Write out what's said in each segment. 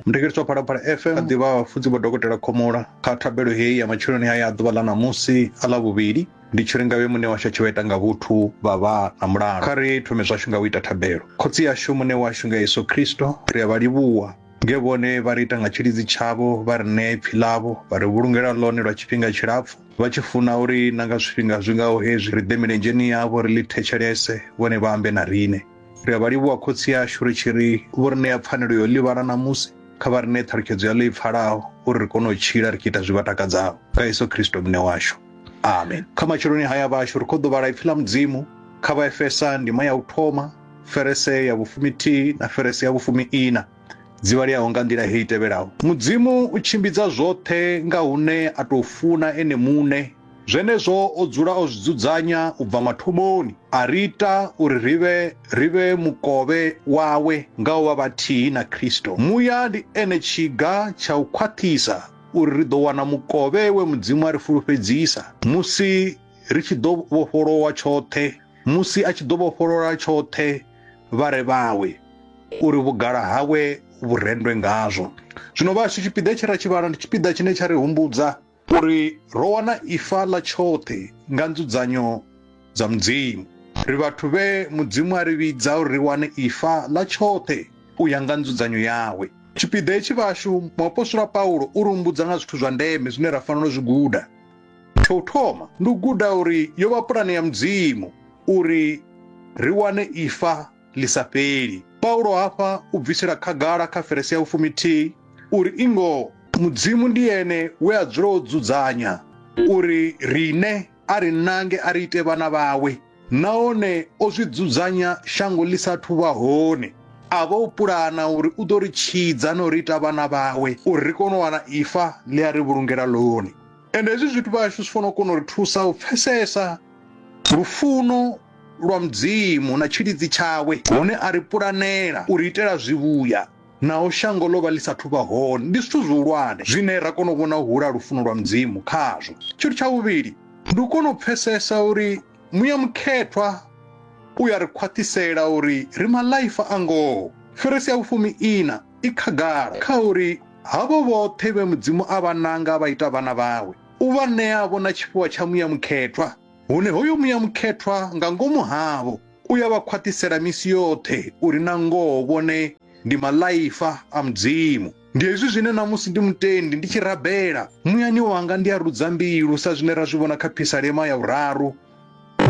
mudekedzwa phalaphala fm a ḓivha vhafudzi vho dokotela khomola kha thabelo heyi ya matsheloni haya a ḓuvha ḽa ṋamusi a ḽa vhuvhili ndi tshi ri ngavhe muṋe washu a tshi vha ita nga vhuthu vha vha na mulalo kha ri thome zwashu nga u ita thabelo khotsi yashu muṋe washu nga yesu khristo ri a vha livhuwa nge vhone vha ri ita nga tshilidzi tshavho vha ri ṋea ipfi ḽavho vha ri vhulungela ḽone lwa tshifhinga tshilapfu vha tshi funa uri na nga zwifhinga zwi ngaho hezwi ri ḓe milenzheni yavho ri ḽi thetshelese vhone vha ambe na riṋe ri a vha livhuwa khotsi ashu ri tshi ri vho ri ṋea pfanelo yo livhana ṋamusi kha vha ri ṋee ṱhalutshedzo ya ḽo i pfalaho uri ri kone u tshila ri tshi ita zwi vha takadzaho nga yesu kristo muṋe washu amen kha matsheloni haya vhashu ri khou ḓo vhala ipfi ḽa mudzimu kha vha efesa ndima ya u thoma ferese ya vhufumi thihi na ferese ya vhufumi ina dzi vhaleaho nga nḓila hei tevhelaho mudzimu u tshimbidza zwoṱhe nga hune a tou funa ene muṋe Zwenezwo o dzula o zwi dzudzanya u bva mathomoni, a ri ita uri ri vhe ri vhe mukovhe wawe nga u vha vhathihi na Kristo. Muya ndi ene tshiga tsha u khwaṱhisa uri ri ḓo wana mukovhe we Mudzimu a ri fulufhedzisa musi ri tshi ḓo vhofholowa tshoṱhe, musi a tshi ḓo vhofholola tshoṱhe vha re vhawe, uri vhugala hawe vhu rendwe ngazwo. Zwino vhashu, tshipiḓa tshe ra tshi vhala ndi tshipiḓa tshine tsha ri humbudza U ri, Ro wana ifa ḽa tshoṱhe nga nzudzanyo dza Mudzimu. Ri vhathu vhe Mudzimu a ri vhidza uri ri wane ifa ḽa tshoṱhe u ya nga nzudzanyo yawe. Tshipiḓa hetshi vhashu, muapostola Paulo u ri humbudza nga zwithu zwa ndeme zwine ra fanela u zwi guda. Tsha u thoma, ndi u guda uri yo vha pulane ya Mudzimu uri ri wane ifa. ḽi sa fheli. Paulo hafha u bvisela khagala kha ferese ya vhufumithihi uri i ngoho Mudzimu ndi ene we a dzula o dzudzanya uri riṋe a ri nange a ri ite vhana vhawe nahone o zwi dzudzanya shango ḽi sa athu vha hone. A vha o pulana uri u ḓo ri tshidza na u ri ita vhana vhawe uri ri kone u wana ifa ḽe a ri vhulungela ḽone. Ende hezwi zwithu vhashu zwi fanela u kona u ri thusa u pfesesa lufuno lwa Mudzimu na tshilidzi tshawe, hone a ri pulanela, u ri itela zwivhuya naho shango ḽo vha ḽi sa thu vha hone. Ndi zwithu zwihulwane zwine ra kona u vhona u hula ha lufuno lwa Mudzimu khazwo. Tshithu tsha vhuvhili, ndi u kona u pfesesa uri muya mukhethwa u ya ri khwaṱhisela uri ri maḽaifa a ngoho. Fhirisi ya vhufumi iṋa i khagala kha uri havho vhoṱhe vhe Mudzimu a vha nanga a vha ita vhana vhawe, u vha ṋea-vho na tshifhiwa tsha muya mukhethwa. Hune hoyo muya mukhethwa nga ngomu havho u ya vha khwaṱhisela misi yoṱhe uri na ngoho vhone ndi maḽaifa a Mudzimu. Ndi hezwi zwine na musi ndi mutendi ndi tshi rabela, muyani wanga ndi a rudza mbilu sa zwine ra zwi vhona kha phisalema ya vhuraru,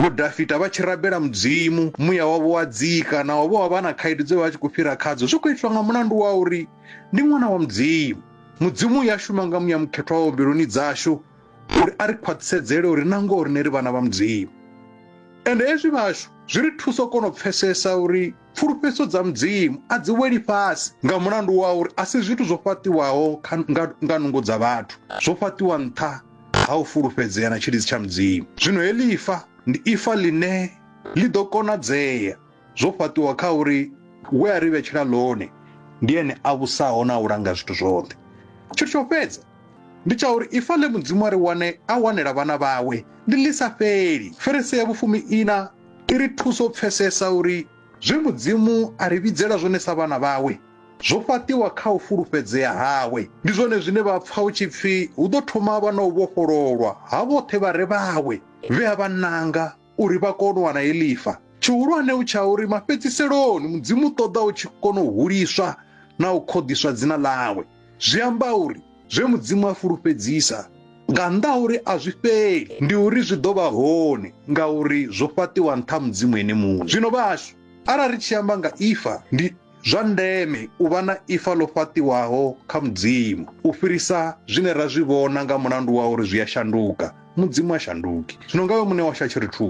Vho Dafita vha tshi rabela Mudzimu, muya wavho wa dzika naho vho vha vha na khaedu dze vha vha tshi khou fhira khadzo, zwi khou itwa nga mulandu wa uri ndi ṅwana wa Mudzimu. Mudzimu u ya shuma nga muya mukhethwa wawe mbiluni dzashu, uri a ri khwaṱhisedzele uri na ngoho rine ri vhana vha mudzimu ende hezwi vhashu zwi ri thusa u kona u pfesesa uri pfulufhedziso dza mudzimu a dzi weli fhasi nga mulandu wa uri a si zwithu zwo fhaṱiwaho nga nungo dza vhathu zwo fhaṱiwa nṱha ha u fulufhedzea na tshilidzi tsha mudzimu zwino heḽi ifa ndi ifa ḽine ḽi ḓo konadzea zwo fhaṱiwa kha uri we a ri vhetshela ḽone ndi ene a vhusaho na u langa zwithu zwoṱhe tshithu tsho fhedza ndi tsha uri ifa ḽe mudzimu a ri wane a wanela vhana vhawe ndi ḽi sa fheli ferese ya vhufumi ina i ri thusa u pfesesa uri zwe mudzimu a ri vhidzela zwone sa vhana vhawe zwo fhaṱiwa kha u fulufhedzea hawe ndi zwone zwine vha pfa hu tshi pfi hu ḓo thoma vha na u vhofhololwa ha vhoṱhe vha re vhawe vhe a vha nanga uri vha kone u wana he lifa. Tshihulwane hu tsha uri mafhedziseloni Mudzimu u ṱoḓa u tshi kona u huliswa na u khoḓiswa dzina ḽawe. Zwi amba uri zwe Mudzimu a fulufhedzisa nga nnḓa ha uri a zwi fheli ndi uri zwi ḓo vha hone ngauri zwo fhaṱiwa nṱha ha Mudzimu ene muṋe. Zwino vhahashu, arali ri tshi amba nga ifa ndi Zwa ndeme u vha na ifa ḽo fhaṱiwaho kha Mudzimu u fhirisa zwine ra zwi vhona nga mulandu wa uri zwi a shanduka. Mudzimu ha shanduki. Zwino nga iwe muṋe washu a tshi ri thusa.